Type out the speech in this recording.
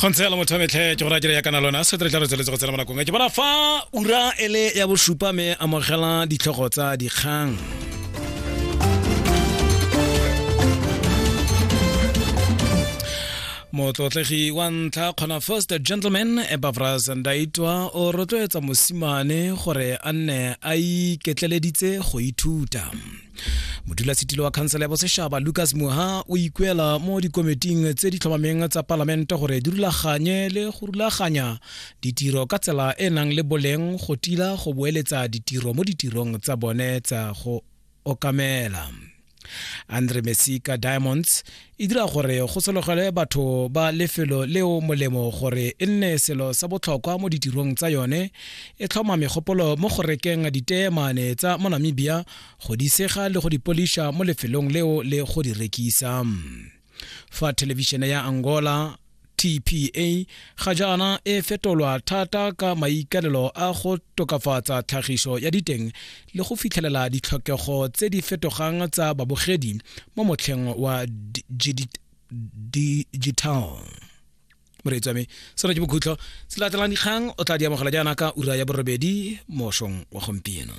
go ntse lo motho metlhe ke go rakele ya kana lona se tle tla re tsweletse go tsena mo nakong ke bona fa ura ele ya bosupa me amogela ditlhogo tsa dikgang motlotlegi wa ntlha kgona first gentleman ebavras ndaitwa o rotloetsa mosimane gore a nne a iketleleditse go ithuta modulasetilo wa khansela ya bosešaba lucas muha o ikuela mo dikomiting tse di tlhomameng tsa palamente gore di rulaganye le go rulaganya ditiro ka tsela e nang le boleng go tila go boeletsa ditiro mo ditirong tsa bone tsa go okamela andre mesika diamonds e dira gore go sologelwe batho ba lefelo leo molemo gore e nne selo sa botlhokwa mo ditirong tsa yone e tlhoma megopolo mo go rekeng diteemane tsa mo namibia go di sega le go di poliša mo lefelong leo le go di rekisa fa thelebišene ya angola TPA ga jaana e fetolwa thata ka maikalelo a go tokafatsa tlhagiso ya diteng le go fitlhelela ditlhokego tse di fetogang tsa babogedi mo motlheng wa digital moreetsi wa me seno ke bokhutlo se latelang dikgang o tla di amogela jaana ka ura ya borobedi mošong wa gompieno